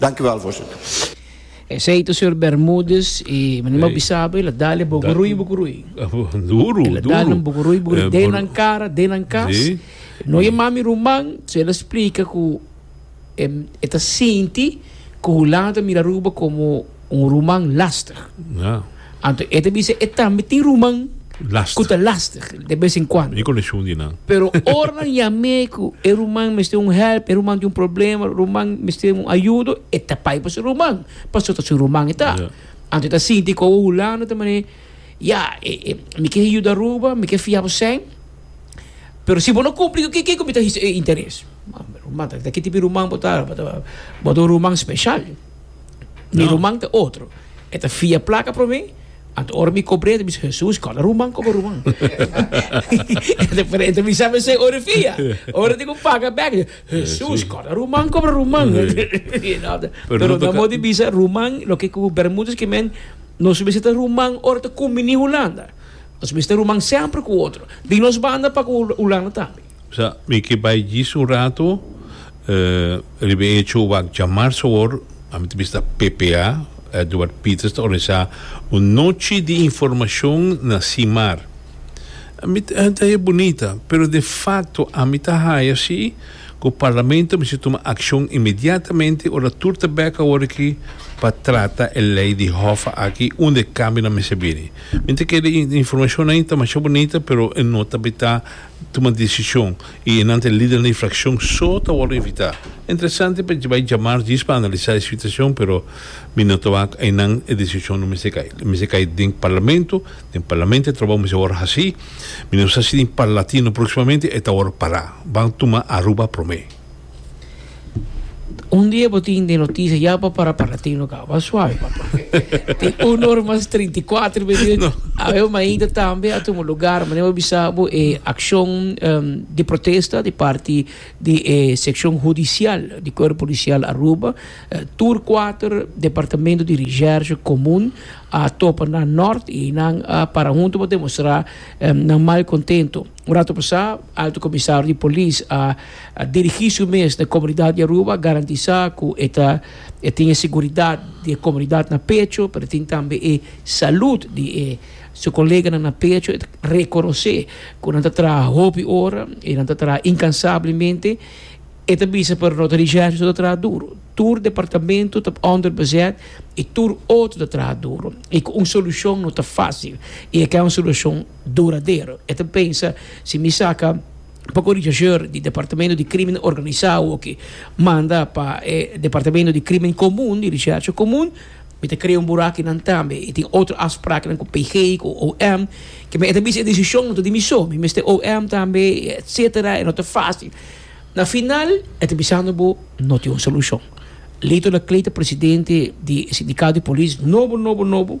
Danki wel, Voorzitter. Esei ta señor Bermudez y mi no bi sa bo el a dale bokorui bokorui. Duro, duro. El a dale un bokorui bokorui den nan cara, den nan cas. No e mami ruman, so el a splica cu e ta sinti cu hulanda ta mira Aruba como Un ruman lastig. Ja. Anto e ta bisa e tambe tin ruman Lastig. ku ta lastig de bes en kuando. Mi konekshon di nan. Pero ora nan yam'e ku e ruman mester un hèlp, e ruman tin un problema, ruman mester un ayudo, e ta bai pa su ruman, paso ta su ruman e ta. Ja. Anto e ta sinti ku awo hulando ta manera, ya, e, e, mi ke yuda Aruba, mi ke fia bo sèn, pero si bo no kumpli ku kiko mi ta hisa e interes. Ruman, ta kiti tipo ruman bo ta? Bo ta un ruman speshal. Mi ruman ta otro. E ta fia plaka promé. Anto ora mi kobr'é, mi bisa, Hesus, kòrda ruman koba ruman. e ta bisa mi esei ora fia. Ora tin ku paga bèk, Hesus, kòrda ruman koba ruman. Pero nan mos di bisa ruman, loke ku Bermúdez ke men, nos mester ta ruman ora ta kuminí Hulanda. Nos mester ta ruman semper ku otro. Di nos banda pa ku Hulanda tambe. Sa, mi ke bai djis un ratu riba e hecho wak djamar sabor, ami ta bista ppa, Edward Pieters ta organisá un nochi di informashon na si mar. Ami ta ta haya bunita, pero de fakto ami ta haya si ku Parlamento mester tuma akshon inmediatamente ora tur ta bèk awor aki pa trata e lei di hòffa aki unda e kambionan mester bini. Mi ta kere informashonnan ei ta masha bunita pero e no tabata tuma desishon i e nan ta e lidernan di frakshon so ta wòrdu invitá. Interesante pa bai jamar djis pa analisá e situashon pero mi no ta wak einan e desishon no mester kai lo mester kai den parlamento den parlamento e trabou mester wòrdu hasí mi no sa si den parlatino próksimamente e ta wòrdu pará ban tuma Aruba promé. Un dia bo tin den noticia ya pa para para tino caba suave papá. tin un hora más 34 minutos. No. A ver maída también a tomar lugar, mané bo bisabo e eh, acción um, de protesta de parte de eh, sección judicial de cuerpo policial Aruba. Uh, tur 4 departamento de recherche común a topa na norte y nan a para junto pa demostrar um, nan mal contento. Un ratu pasá, Alto Komisario di Polis a dirigí su mes na e komunidat di Aruba, a garantisá ku e ta e tin e seguridat di e komunidat na pecho, pero e tin tambe e salud di e su koleganan na pecho. E ta rekonosé ku nan ta traha hopi ora i nan ta traha inkansablemente. E ta bisa pa Renato Dijsselbloem so ta traha duru. Tur departamento ta onderbezet i tur otro ta traha duru. I ku un solushon no ta fásil. I e kai un solushon. duradero. E ta pensa, Si mi saca poco richacheur di Departamento di Crimen Organisao oki manda pa e Departamento di Crimen Comun, di Recherche Comun, mi ta crea un burakinan tambe. E tin otro afspraaknan cu PG, cu OM. Kema e ta bisa e decision no ta di mi so, mi mester OM tambe, etc. E no ta facil. Na final e ta bisando bo, No tin un solucion. Lito Laclay ta presidente di e sindicato di polis nobo, nobo, nobo.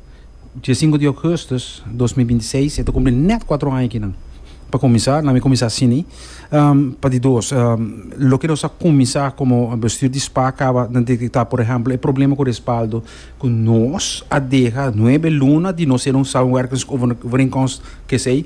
Dia sinku di Augustus dos mil binti seis e ta kumpli nèt kuatro aña kinan. Pa kuminsá, lamin kuminsá asini, pa di dos, loke nos a kuminsá komo bestuur di spa kaba ta detektá, por ehèmpel, e problema ku respaldo ku nos a deha nuebe luna di nos ser un samenwerkingskovereenkomst, kesei.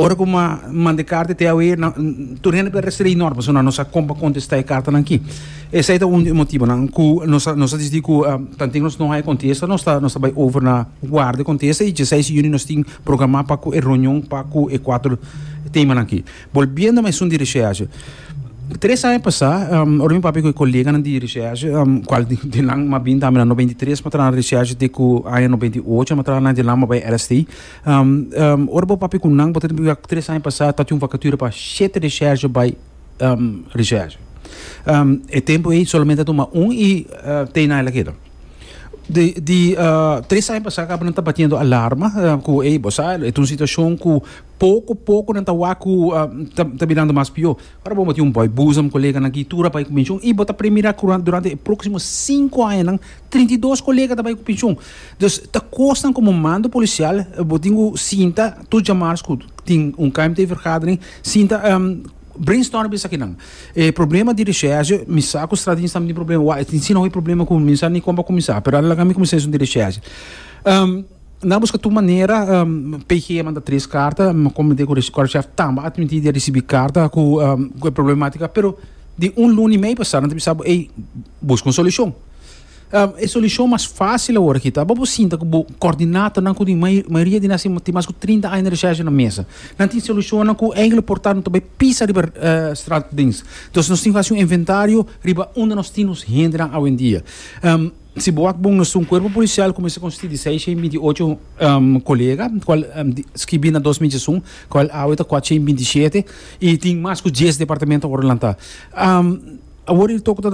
Ora ku N manda e karta te awe, tur hende ta restringi nos, pasobra nan no sa kon pa kontestá e kartanan akí. Esei ta un di e motibunan ku nos a nos a dici di ku tantu nos no haya kontesta nos ta nos ta bai over na guarda e kontesta i djeseis di yunia nos tin programá pa ku e runion pa ku e kuater temanan akí. Bolbiendo na esun di reshershe, tres aña pasá ora mi papia ku e koleganan di reshershe, kual di nan mas bin tambe na nobenta i tres mi a traha na reshershe te ku aña nobenta i ocho mi a traha na e di nan mi a bai LST, Ora bo papia ku nan, bo ta tende pibia ku tres aña pasá tabata un vakatura pa shete reshèrshe bai reshèrshe. E tempu ei solamente a tuma un i t'ei na el a keda. Di tres aña pasá kaba nan ta batiendo alarma ku ei bo sa e ta un situashon ku poko poko nan ta wak ku ta ta birando mas pió. Ora bo mati un bòi, busa un koleganan aki tur a bai ku penshun i bo ta premira ku durante e próksimo sinku añanan trinta i dos kolega ta bai ku penshun. Dus ta kosnan komo mando polisial bo tin ku sinta tur djamars ku tin un KMT vergadering sinta brainstorm esakinan. E problema di reshèrsje mi sa ku Stradins tambe tin problema wak e tin sino e problema ku mi sa ni kon pa kuminsá pero a laga mi kuminsá esun di reshèrsje. Na buska tur manera PG a manda tres karta, mi a koment'é ku Resikorsjef tambe a admití di a risibí karta ku e problematika pero di un luni mei pasá nan ta bisa bo ey buska un solushon. E solushon mas fásil awor aki ta bo bo sinta ku bo kòrdinatornan ku di mayoria di nan asina tin mas ku trinta aña di reshèrsha na mesa. Nan tin solushonnan ku enkele por ta nan ta bai pisa riba straat dens. Entonces nos tin ku hasi un inventario riba unda nos tin nos hendenan awendia. Si bo wak bon esun kuerpo polisial ku mester konstitui di seis shen binti ocho kolega kual skibi na dos michi esun kual awe ta kuat shen binti shete i tin mas ku dies departamento por lanta awor i tok ta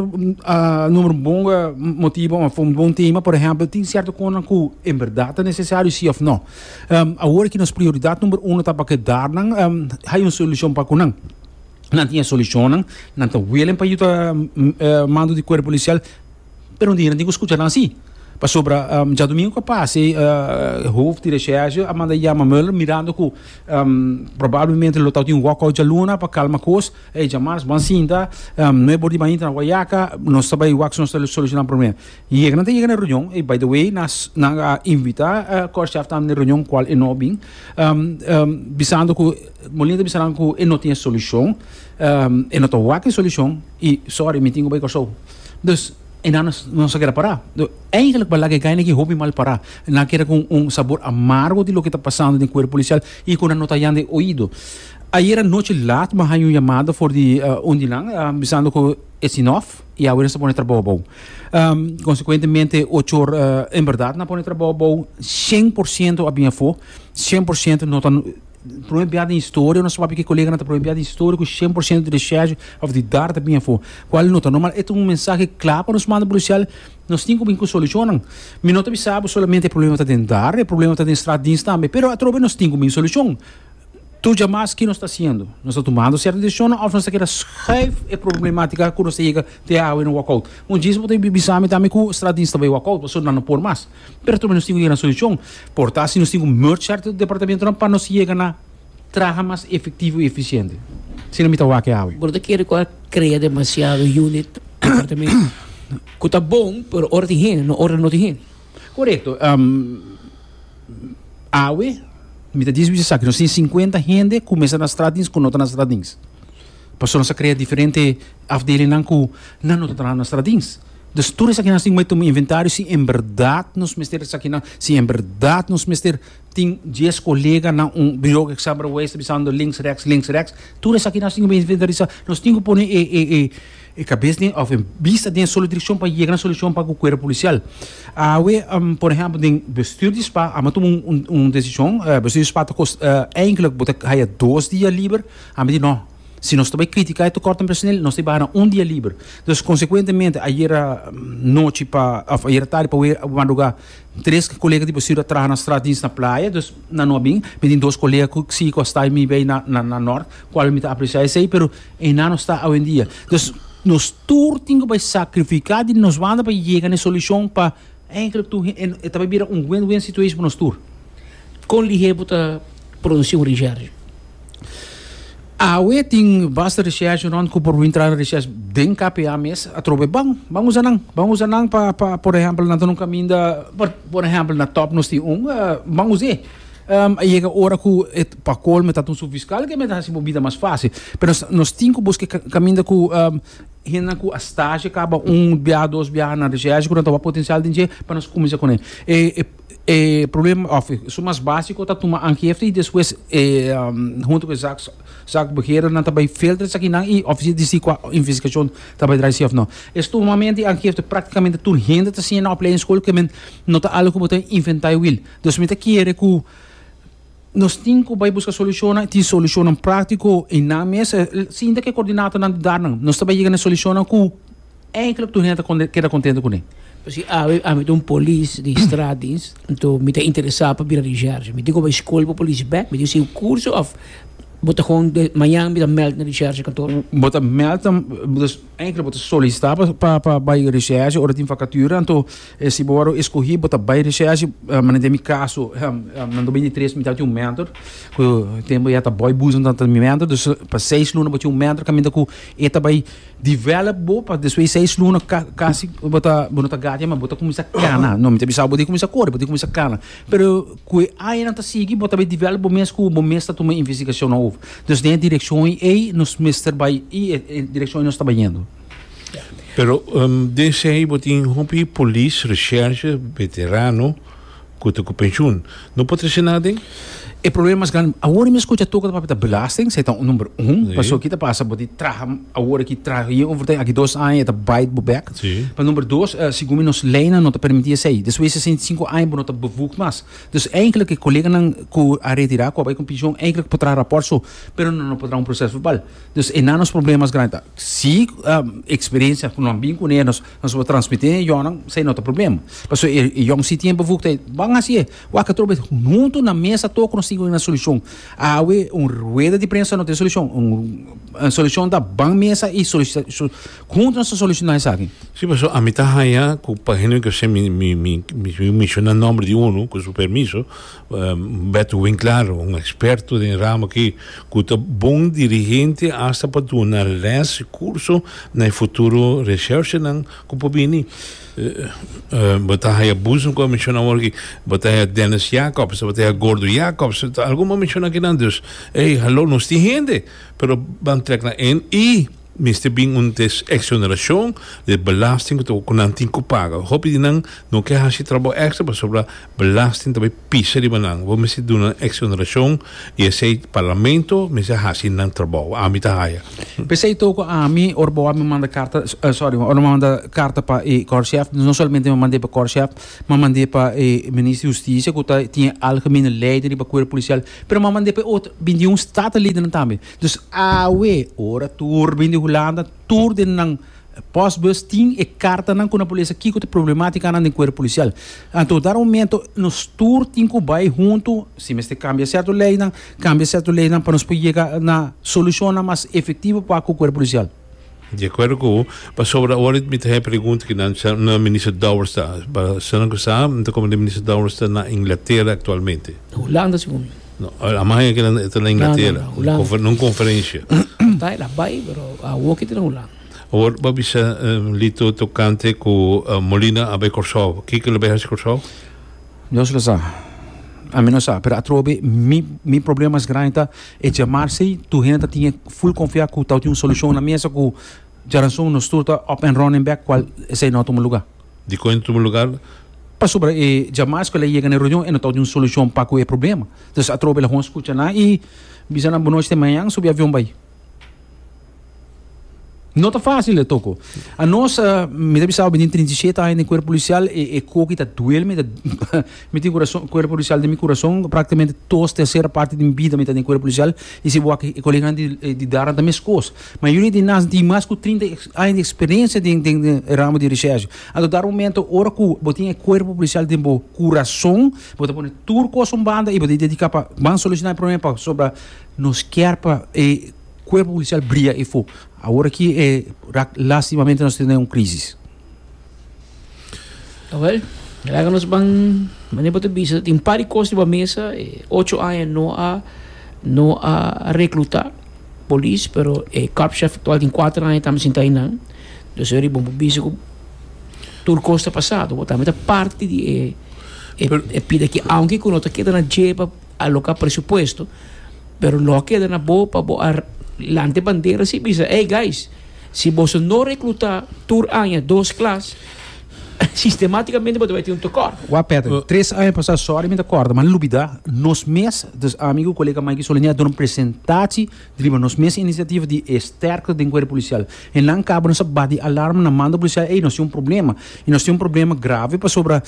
numero un bon motibu òf un bon tema por ehèmpel tin sierto kosnan ku en bèrdat ta nesesario si òf nò awor ki nos prioridat numero uno ta pa kedat nan hay un solushon pa ku nan nan tin e solushonnan nan ta welen pa yu ta mando di kuerpo polisial. Pero un dia nan tin ku skucha nan si. Pasobra djadumingu ku a pasa ei hof di reshèrshe a manda yama Mueller mirando ku probablemente lo tabata tin un wòkòut djaluna pa kalma kos. Ey djamars ban sinta, no e bor di ban intra na Guayaca, nos ta bai wak si nos ta solushoná promé. Yega nan ta yega na e reunion, ey by the way nan nan a invitá Korshaf tambe na e reunion kual e no bin, bisando ku Molina ta bisa nan ku e no tin e solushon, e no ta wak e solushon i sorry mi tin ku bai Kòrsou. Dus e nan nos a keda pará. Eigenlijk balak e gayna aki hopi mal pará. E nan a keda ku un sabor amargo di loke ta pasando den kuerpo polisial i ku nan no ta yanda e oido. Ayer anochi lat mi haña un yamada for di un di nan bisando ku e sinòf i awe nos ta pone trabou abou. Konsekuentemente ocho or en bèrdat nan a pone trabou abou, shen por siento a bin afó, shen por siento no ta Prome biaha den historia, nos ta papia ku koleganan ta prome biaha den historia ku shen por shento di reshèsho òf di dar ta bini afó, kual no ta normal. E ta un mensahe kla pa nos manda polisial, nos tin ku bin ku solushonnan. Mi no ta bisa bo solamente e problema ta den dar, e problema ta den strat dins tambe, pero atrobe nos tin ku bin solushon. Tur dja mas ke nos ta hasiendo? Nos ta tumando sierto desishonnan òf nos ta keda shuif e problematika ku nos ta yega te awe na wòkout? Un djis bo ta bisa mi tambe ku strat dins ta bai wòkout pasobra nan no por mas. Pero tambe nos tin ku yega na solushon por ta si nos tin ku merge sèrto departamentunan pa nos yega na traha mas efektivo i efisiente. Si no mi ta wak e awe. Bo no ta kere ku a krea demasiado unit, departamento, ku ta bon pero ora tin hende no ora no tin hende? Korekto. Awe mi ta diskusí esaki. Nos tin sinkuenta hende ku mester na strat dins ku no ta na strat dins. Pasobra nos a krea diferente afdelinnan ku nan no ta traha na strat dins. Dus tur esakinan tin bay tuma inventario si en berdad nos mester esakinan, si en berdad nos mester tin dies colega na un bureau cu sa bay ta bisando links rechts, links rechts, tur esakinan tin bay inventarisa, nos tin cu pone e cabes den of e bista den e solo direccion pa yega na solucion pa cu cuerpo policial. Awe por ehempel den bestuur di spa amo a tuma un un decision, bestuur di spa ta cos, eindelijk bo ta haya dos dia liber, a mi di no. Si nos ta bai critica e tecort en personel, nos ta baha na un dia liber. Entonces, consecuentemente, ayera nochi pa, of ayera tardi pa madruga, tres colega di Bosirio a traha na straat dienst na Playa, dus nan no a bin, mi tin dos colega cu si cu a sta mi bay na na Nort, cual mi ta aprecia esey, pero eynan no sta awendia. Entonces, nos tur tin cu bay sacrifica di nos banda pa yega na e solucion pa Eindelijk toe e ta bay bira un win-win situation pa nos tur. Con lihe bo ta produci un recherche? Awe tin basta recherche rond cu por wintra na recherche den KPA mes atrobe. Bon, ban usa nan. Ban usa nan pa, pa, por ehempel, nan ta na un caminda, por, por ehempel, na Top nos tin un, ban usa e. A yega ora cu e, pa colmo, e ta ta un subfiscal, ke men ta haci bo bida mas facil. Pero nos, nos tin cu busca caminda cu. Hendenan ku a stashi kaba un biaha dos biaha na desea esei ku nan ta wak potensial den dje pa nos kuminsá kuné. E e problema òf su mas básiko ta tuma angifte i despues huntu ku zak zak beheren nan ta bai filtra esakinan i ofresie di si kua investigashon ta bai drai si òf nò. E stumamento i angifte praktikamente tur hende ta siña na opleiding skol ku men no ta algu ku bo ta inventá e wil. Dus mi ta kere ku. Nos tin cu bay busca solucionnan y tin solucionnan practico y nan mes sinta cu e coordinatornan di dar nan. Nos ta bay yega na e solucionnan cu eindelijk tur hende ta keda contento cu ne. Pasobra awe ami ta un polis di straatdienst, anto mi ta interesa pa bira recherche. Mi tin cu bay school pa polis bek, mi tin cu sigue un curso of bo ta gewoon de mañana mi ta meld na recherche kantoor? Bo ta meld na. Enkele bo ta solisitá pa pa bai recherche ora tin vacatuur anto si bo wòrdu eskohí bo ta bai recherche manera den mi kaso nan ta bini tres mitad tin un mentor ku tempo ya ta bòi busnan ta ta mi mentor dus pa seis luna bo tin un mentor kaminda ku e ta bai develop bo pa despues seis luna ka kasi bo ta bo no ta gati mas bo ta kuminsá kana no mi ta bisa bo bo tin kuminsá kore bo tin kuminsá kana. Pero ku e añanan ta sigui bo ta bay develop bo mes ku bo mes ta tuma investigashonnan over. Dus den e direkshon ei nos mester bay i e direkshon ei nos ta bay yendo. Pero den esei ei bo tin hopi polis, reshèrshe, veterano ku ta ku penshun. No por trese nan aden? E problema mas grandi, awor mi a skucha toka ta papia ta belasting, esei ta number un. Pasobra ki ta pasa, bo tin traha awor aki, traha yen overtime, aki dos aña e ta bait bo bèk. Pa number dos, segun mi nos leynan no ta permiti esei. Despues di sesenta i sinku aña bo no ta bevoegd mas. Dus eindelijk e koleganan ku a retirá, ku a bai ku pensioen, eindelijk por traha rapòrt su, pero nan no por traha un proses verbal. Dus einan nos problema mas grandi ta. Si eksperensia ku nan bin kuné nos por transmití den e yònnan, esei no ta problema. Pasobra e yòn si tin e bevoegd ei, bo a hasi e. Wak atrobe e. Huntu na mesa tok nos tin ku bin na solushon. Awe un rueda di prensa no ta e solushon. Un solushon ta ban mesa i solisitashon. Huntu nos ta soluciona esaki. Si, pasobra ami ta haña cu pa Henry Garcia mi mi mi mi mi menciona nomber di uno, cu su permiso, Beto Winclaro, un experto den e ramo aki, cu ta bon dirigente hasta pa duna les y curso na e futuro recherchenan cu por bini. Bo ta haña Boezem, cu a menciona awor aki, bo ta haña Dennis Jacobs, bo ta haña Gordo Jacobs, algun bo a menciona akinan. Dus, ey, halo, nos tin hende, pero ban trek na ein y. Mester bin un desexoneracion den belasting cu toca cu nan tin cu paga. Hopi di nan no ke haci trabao extra pasobra belasting ta bay pisa riba nan. Bo mester duna nan exoneracion y esey Parlamento mester haci nan trabao. Ami ta haya. P'esey toco ami ora bo a mi manda carta, sorry, ora bo a mi manda carta pa e Corchef, no solamente mi a mand'e pa Corchef, mi a mand'e pa e Minister di Husticia cu ta tin e algemene leiding riba Cuerpo Policial, pero mi a mand'e pa e otro, bin di un Statenleden tambe. Dus awe ora tur bin di Hulanda tur den nan postbus tin e kartanan ku nan por lesa kiko ta problematikanan den kuerp polisial. Anto dara momento nos tur tin ku bai huntu si mester kambia sierto leinan kambia sierto leinan pa nos por yega na solushonnan mas efektivo pa ku kuerp polisial. De acuerdo cu u, pasobra awor it mi ta haña pregunta aki nan, sa na Minister Dowers ta? Pa esnan cu sa, mi ta comprende Minister Dowers ta na Inglaterra actualmente. Hulanda segun mi. No, a mi a haña kinan, e ta na Inglaterra, na un conferencia. Ta, el a bay, pero awor cu e ta na Hulanda. Awor bo a bisa Lito tocante cu Molina a bay Corsou, kico el a bay haci Corsou? Dios lo sa. Ami no sa, pero atrobe mi mi problema mas grandi ta e jamar si tur hende ta tin e full konfia ku ta tin un solushon na mesa ku djaransun nos tur ta up and running back kual esei no a tuma lugar. Dikon e no tuma lugar? Pasobra e djamars ku el a yega na e reunion e no ta tin un solushon pa ku e problema. Entonces atrobe el a honger skucha nan i bisa nan bo nochi te mañan subi avion bai. No ta fácil de toko. A nos, uh, mi ta bisao binin 37 años den cuerpo policial, e, e coqui ta duel, mi ta, mi tin corazón, cuerpo policial de mi corazón, prácticamente dos tercera parte de mi vida mi ta den cuerpo policial, y si bo aki, e colega di, eh, di Darna ta mes cos. Mayoría di nas tin mas cu 30 años de experiencia den, den, den e ramo di recherche. Anto dar un momento, ora cu bo tin e cuerpo policial den bo corazón, bo ta pone tur cos un banda y bo ta dedica pa, ban soluciona e problema pa, so pa Nos kier pa e cuerpo policial bria efo. Awor aki e rak lastimamente nos tene un crisis. Awel, laga nos ban mane pa ta bisa. Tin un par di cos riba mesa. E ocho aña no a no a recluta polis, pero e korpschef actual tin kuater aña tambe sinta einan. Dus e bon pa bisa cu tur cos ta pasado. Bo tambe ta parti di e pida aki, aunke cu no ta keda na dje pa. aloca presupuesto pero lo a keda na bo pa bo a lante bandera si bisa ey guys si boso no recluta tur aña dos klas sistematicamente bo ta bay tin un tekort. Wak Patrick, uh. tres aña pasa, sorry mi ta corta, ma lubida nos mes, dus ami ku kolega Mikey Solini a duna presentaci di riba nos mes iniciativa di e sterkte den cuerpo policial. E nan cabo nos a bati alarma na mando policial, ey nos tin un problema, y nos tin un problema grave pasobra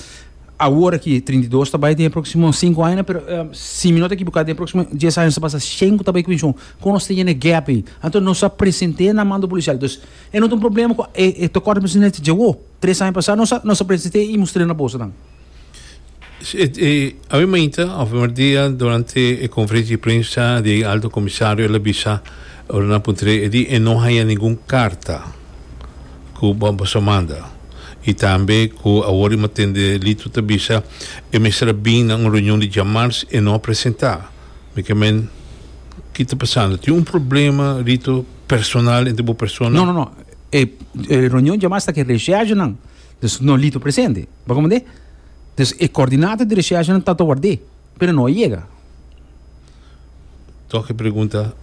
Awor aki trinta i dos ta bai den e próksimo sinku añanan pero si mi no ta ekiboká den e próksimo dies aña ta basa shen ku ta bai ku penshon kon nos ta yena e gèp ei anto nos a present'é na mando polisial entonces e no ta un problema ku e tokor ta bisa nel djawo tres aña pasá nos a nos a present'é i mustr'é na boso nan. Awe mainta òf e mardia durante e konferensia di prensa di e Alto Komisario el a bisa ora nan puntr'é e di e no haña ningun karta. ku bo a boso manda i tambe ku awor i mos tende Lito ta bisa e mester a bin na un reunion di djamars e no a presentá mi ke men ki ta pasando tin un problema Lito personal entre bo persona No, no, no. E, e reunion djamars ta ke recherchenan. Dus no Lito presente. Bo comprende? Dus e coördinata di recherchenan ta ta ward'é. Pero no a yega. Tok e pregunta,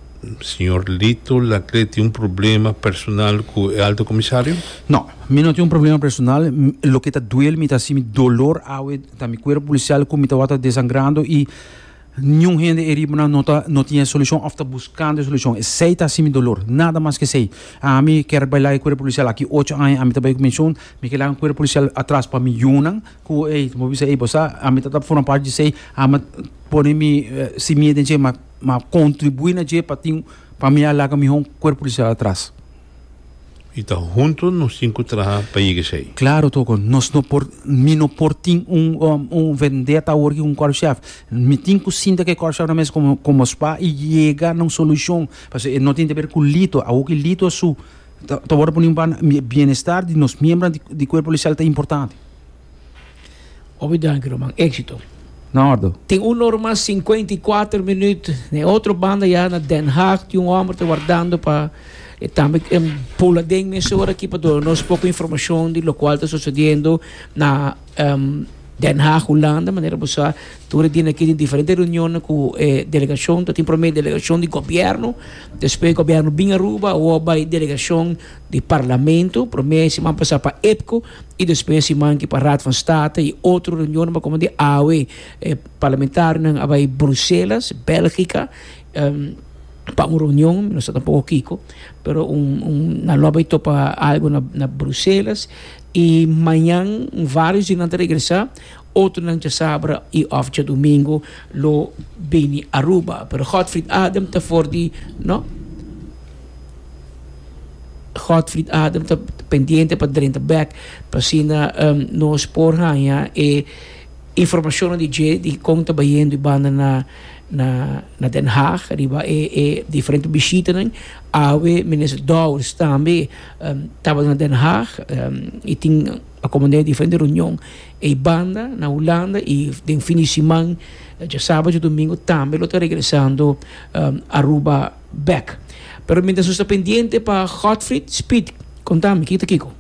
Señor Lito Laclet tin un problema personal cu e Alto Comisario? No, mi no tin un problema personal. Loke ta duel mi ta haci mi dolor awe ta mi cuerpo policial cu mi ta wata desangrando y niun hende e riba nan no ta no tin e solucion of ta buscando e solucion. Esey ta haci mi dolor, nada mas que esey. Ami ker bay laga e cuerpo policial aki ocho aña, ami ta bay cu pensioen, mi ker laga un cuerpo policial atras pa mi yunan, Ku ei, bo bisa ei, bo sa, ami ta forma parti di esei, ami a pone mi simia den dje, mi a kontribuí na dje pa tin, pa mi a laga mihó un kuerpo polisial atras. I ta huntu nos tin ku traha pa yega esei. Klaro, toko nos no por, mi no por tin un un vendeta awor aki ku un kòrpshèf. Mi tin ku sinta ku e kòrpshèf nan mes komo komo spa i yega na un solushon. Pasobra e no tin te ber ku Lito, awor ku Lito a su ta ta wòrdu poniba na bienestar di nos miembronan di kuerpo polisial ta importante. Obi danki Roman, éxito. Na órdo. Tin un ora mas sinkuenta i kuater minüt. Na e otro banda ya na Den Haag tin un hòmber ta wardando pa e tambe pul aden mesora aki pa duna nos poko informashon di lokual ta sosodiendo na Den Haag, Hulanda. Manera bo sa, tur e dianan aki tin diferente reunionnan ku e delegashon. Ta tin promé delegashon di gobièrnu, despues gobièrnu bin Aruba, awor bai delegashon di parlamento, promé siman pasá pa EPCO. y despues e manki pa Raad van State y otro reunionnan como de awe e parlamentarionan a bay Bruselas, Belgica, pa un reunion, mi no sa tampoco kico, pero nan lo a bay topa algo na Bruselas y mañan varios di nan ta regresa, otronan djasabra y of djadomingo lo bini Aruba, pero Godfried Adam ta for di no. Godfried Adam ta pendiente pa drenta bek pa asina nos por haña e informacionnan di dje di con ta bayendo e banda na na Den Haag riba e e diferente bishitanan. Awe Minister Dowers tambe tabata na Den Haag y tin acomod'é diferente reunion ei banda na Hulanda y den fin di siman djasabatdje domingo tambe lo ta regresando Aruba. bek. Pero mientras nos ta pendiente pa Godfried, Speed, conta mi kita kico.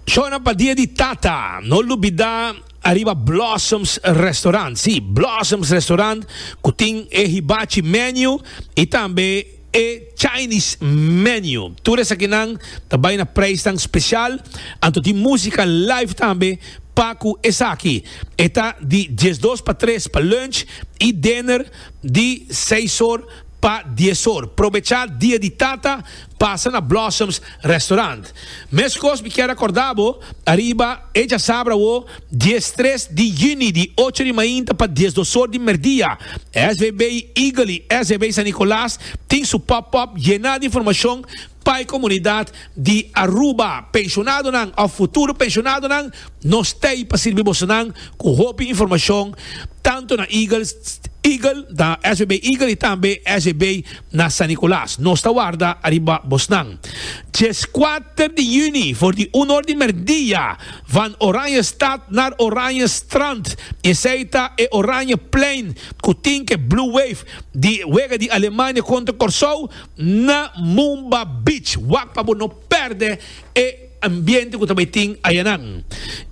Shona pa dia di tata, no lubida ariba Blossoms Restaurant, si, Blossoms Restaurant cu tin e hibachi menu y tambe e Chinese menu. Tur esakinan ta bay na prijsnan special, anto tin musica live tambe pa cu esaki. E ta di diesdos pa tres pa lunch y dinner. Di seis or pa dies or. Probecha dia di tata pasa na Blossoms Restaurant. Meskos mi kier a korda bo ariba e djasabra awo dies tres di yüni di ocho di mainta pa dies dos or di merdia. SVB Eagle y SVB San Nicolas tin su pop-up yená di informashon. Pa e komunidat di Aruba, penshonadonan òf futuro penshonadonan, nos ta ei pa sirbi bosonan ku hopi informashon tantu na Eagles Eagle na SBB Eagle i tambe SBB na San Nicolas. Nos ta warda ariba bosnan. Dies kuater di yüni for di un or di merdia van Oranjestad naar Oranjestrand. Esei ta e Oranjeplein ku tin ke Blue Wave di wega di Alemania kontra Kòrsou. na Mumba Beach. Wak pa bo no perde e ambiente ku ta bai tin ayanan.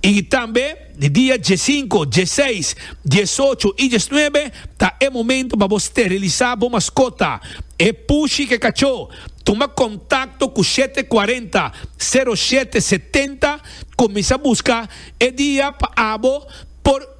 Y tambe di dia diesinko, dieseis, diesocho y diesnuebe ta e momento pa bo sterilisa bo maskota, e pushi ke kacho. Tuma kontakto ku shete kuarenta, sero shete setenta, kuminsa buska e dia pa abo por.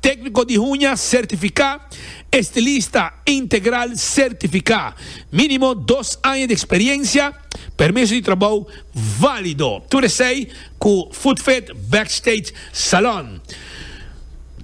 Tékniko di huña sertifiká, estilista integral sertifiká, mínimo dos aña di eksperiensia, permiso di trabou válido, tur esei ku Footfit Backstage Salon.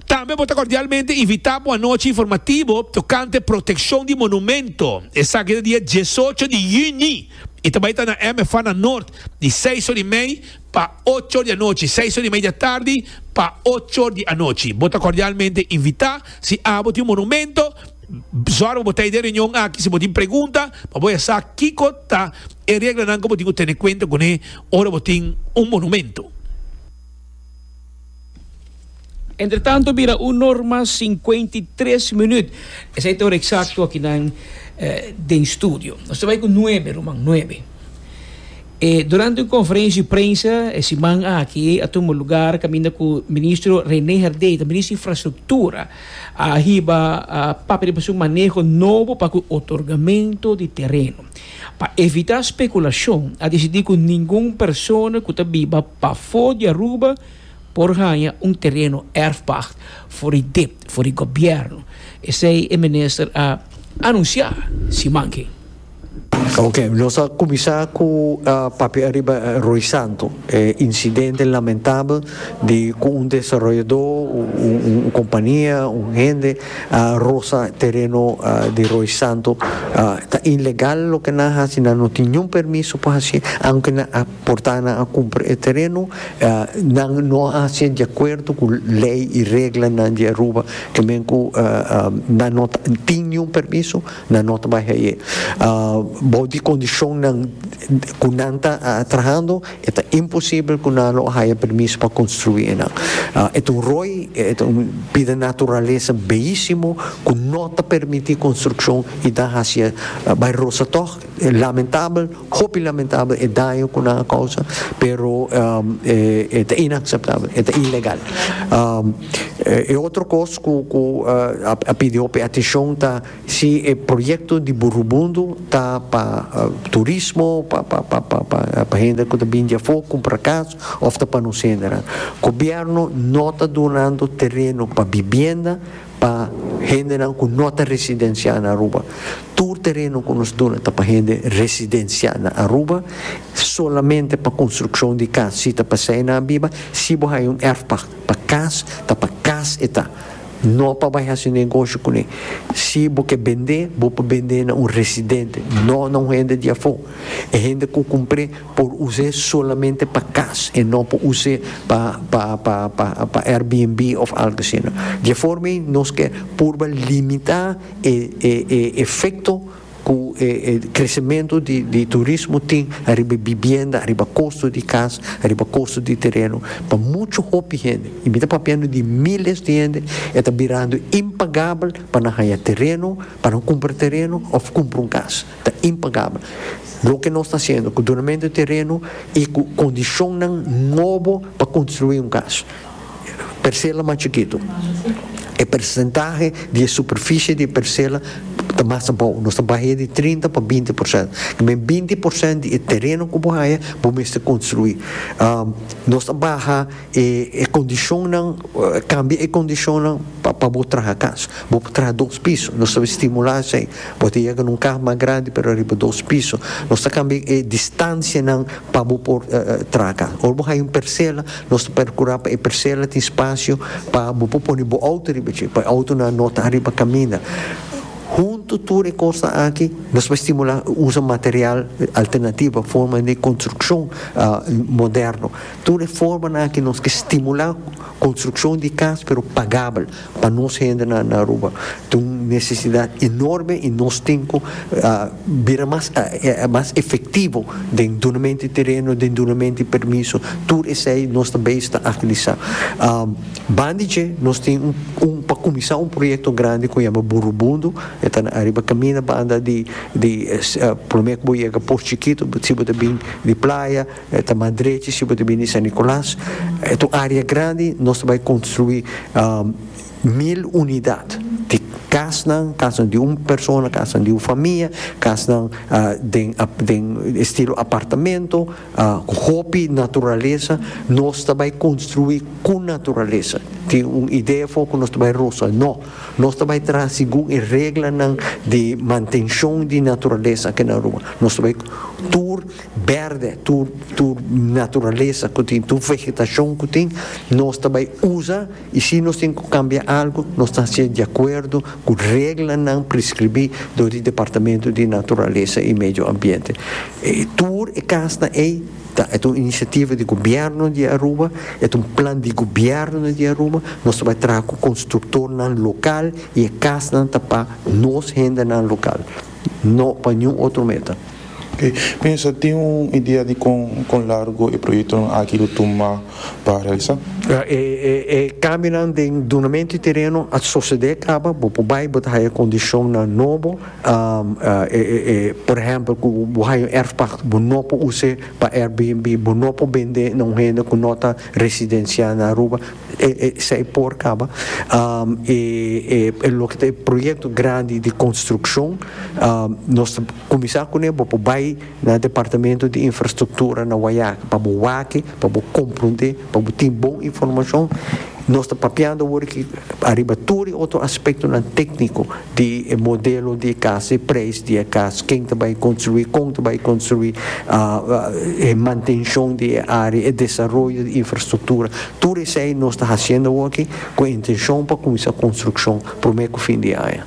Tambe bo ta kordialmente invitá pa un anochi informativo tokante protekshon di monumento, esaki ta dia diesocho di yüni i ta bai ta na MFANA Nort, di seis or i mei Pa ocho di anochi, seis or y media tardi pa ocho di anochi. Bo ta cordialmente invita. Si abo tin un monumento, zorg pa bo ta e den reunion aki. Si bo tin pregunta, pa bo a sa kico ta e reglanan cu bo tin cu tene cuenta cune ora bo tin un monumento. Entretanto bira un norma sinkuenta i tres minüt. Esei ta ora eksakto aki nan den studio. Nos ta bai ku nuebe, ruman, nuebe. E durante un konferensia di prensa e siman aki a tuma lugar kaminda ku Ministro Rene Herdé, ta Ministro di Infrastruktura, a hiba papia di pasobra un maneho nobo pa ku otorgamentu di tereno. Pa evitá spekulashon, a disidí ku ningun persona ku ta biba pafó di Aruba por haña un tereno erfpacht for di dipt for di gobièrnu, esei e minister a anunsiá siman ke. Oke, nos ta kuminsá ku papia ariba Roy Santo, e insidente lamentabel di ku un desaroyadó, un kompania, un hende. Rosa tereno di Roy Santo ta ilegal loke nan hasi nan no tin niun permiso pa hasi aunke nan a porta nan a kumpra e tereno nan no a hasié di akuerdo ku lei i reglanan di Aruba ke men ku nan no ta tin niun permiso nan no ta bai haié bou di kondishonnan ku nan ta trahando. E ta imposibel ku nan lo haya permiso pa konstruí enan. E ta un roi, e ta un bi den naturalesa beísimo ku no ta permití konstrukshon i ta hasié bai rosa tòg. Lamentabel, hopi lamentabel e daño ku nan a kousa, pero e ta inakseptabel, e ta ilegal. E otro kos ku a pidi hopi atenshon ta. Si e proyecto di Burhubundu ta pa turismo, pa hende cu ta bini di afo cumpra cas of ta pa nos hendenan, gobierno no ta dunando tereno pa bibienda pa hendenan cu no ta residencia na Aruba. Tur tereno cu nos duna ta pa hende residencia na Aruba, solamente pa construccion di cas si ta pa esey nan biba, si bo haya un erfpacht pa cas, ta pa cas e ta. No pa bai hasi negoshi kuné. Si bo ke bendé, bo por bendé na un residente, no na un hende di afó. E hende ku kumpr'é por us'é solamente pa kas, e no por us'é pa pa pa pa pa Airbnb òf algu asina. Di e forma ei nos ke purba limitá e e e efekto. Cu e crecemento di turismo tin ariba e bibienda, ariba costo di cas, ariba costo di tereno, pa mucho hopi hende, y mi ta papiando di miles di hende, e ta birando impagabel pa nan haya tereno, pa nan cumpra tereno of cumpra un cas. Ta impagabel. Loke nos ta haciendo cu donamento di tereno y cu condicionnan nobo pa construi un cas, persela mas chikitu. E persentahe di e superfishi di e persela ta mas abou, nos ta bah'é di trinta pa binti por sènt. Ta mester binti por sènt di e tereno ku bo haña bo mester konstruí. Nos ta baha e kondishonnan, kambia e kondishonnan pa bo traha kas. Bo por traha dos piso, nos ta stimulá esei. Bo ta yega na un kas mas grandi pero riba dos piso. Nos ta kambia e distansianan pa bo por traha kas. Ora bo haña un persela. Nos ta percura pa e persela tin spacio pa bo por pone bo auto riba dje, pa e autonan no ta ariba caminda. Hunto tur e cosnan aki, nos por stimula usa material alternativo, forma di construccion moderno. Tur e formanan aki nos ke stimula construccion di cas pero pagabel. Pa nos hendenan na Aruba ta un nesesidat enorme i nos tin ku bira mas mas efektivo den dunamento di tereno, den dunamento di permiso, tur esei nos ta beish ta agilisá. Banda di dje nos tin un un pa kuminsá un proyekto grandi ku yama Burubundo, e ta na ariba kaminda banda di di promé ku bo yega Posh Chikito si bo ta bin di playa, E ta mas drechi si bo ta bini San Nicolas. E ta un area grandi. Nos ta bai construi mil unidad di casnan, casnan di un persona, casnan di un famia, casnan den den estilo apartamento cu hopi naturalesa. Nos ta bai construi cu naturalesa. Tin un idea afo cu nos ta bai rosa. No. Nos ta bai traha segun e reglanan di mantencion di naturalesa aki na Aruba. Nos ta bai tur. berde, tur tur naturalesa ku tin, tur vegetashon ku tin, nos ta bai usa i si nos tin ku kambia algu nos ta hasié di akuerdo ku reglanan preskribí dor di Departamentu di Naturalesa i Medio Ambiente. E tur e kasnan ei ta et un inisiativa di Gobièrnu di Aruba, et un plan di Gobièrnu di Aruba, nos ta bai traha ku konstruktornan lokal i e kasnan ta pa nos hendenan lokal. No pa niun otro meta. Oke, pensa, tin un idea di kon kon largo e proyektonan aki lo tuma pa realisá? E kambionan den dunamentu di tereno a sosodé kaba, bo por bai bo ta haya kondishonnan nobo, por ehèmpel ku bo haya un èrfpakte bo no por us'é pa Airbnb, bo no por bend'é na un hende ku no ta residensiá na Aruba. Esei por kaba loke ta e proyekto grandi di konstrukshon, nos ta kuminsá kuné, bo por bai na Departamento di Infrastruktura na Wayaki pa bo wak, pa bo komprondé, pa bo tin bon informashon. Nos ta papiando awor aki ariba tur e otro aspektonan tékniko. di e modelo di e cas, e prijs di e cas, ken ta bai construi, kon ta bai construi, e mantencion di e area, e desaroyo di infrastructura, tur esei nos ta haciendo awo aki cu e intencion pa cuminsa construccion prome cu fin di aña.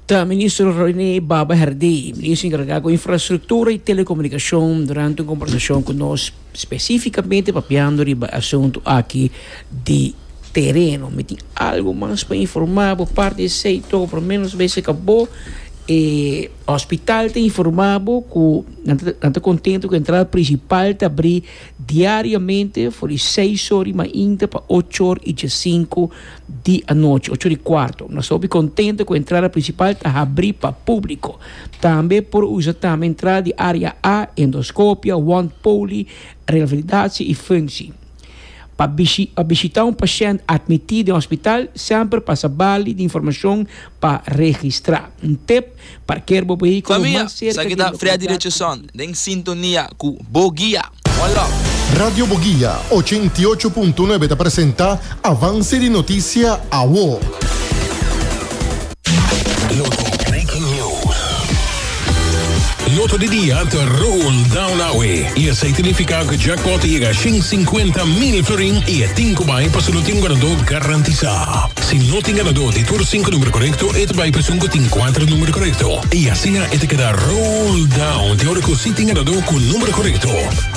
Ta Minister René Baba Herdé, Minister encarga cu Infrastructura y Telecomunicacion, durante un combersacion cu nos. Specificamente papiando riba e asuntu aki di tereno, mi tin algo mas pa informa bo aparte di esey to, por lo menos bay cerca bo e hospital ta informa bo cu nan ta nan ta contento cu entrada principal ta abri diariamente for di seis or y mainta pa ocho or y djasinco di anochi, ocho di cuarto. Nos ta hopi contento cu entrada principal ta habri pa publico. Tambe por usa tambe entrada di area A, endoscopia, wond poli, revalidatie y functie. Pa pa bishita un pashent admiti den hospital, semper pasa bali di informacion pa registra. Un tip. Parkeer bo behíkulo mas serka di e lokalidad. Radio Boguia ochenta i ocho punto nuebe ta presenta Avance di Noticia Awo. Loto di dia ta roll down awe y esey tinifica cu jackpot ta yega shin cincuenta mil florin y e tin cu bay pa su lutin ganador garantisa. A. Si no tin ganadó di tur sinku numero korekto, e ta bai pa esun ku tin kuater numero korekto, i asina e ta keda roll down te ora ku si tin ganadó ku numero korekto.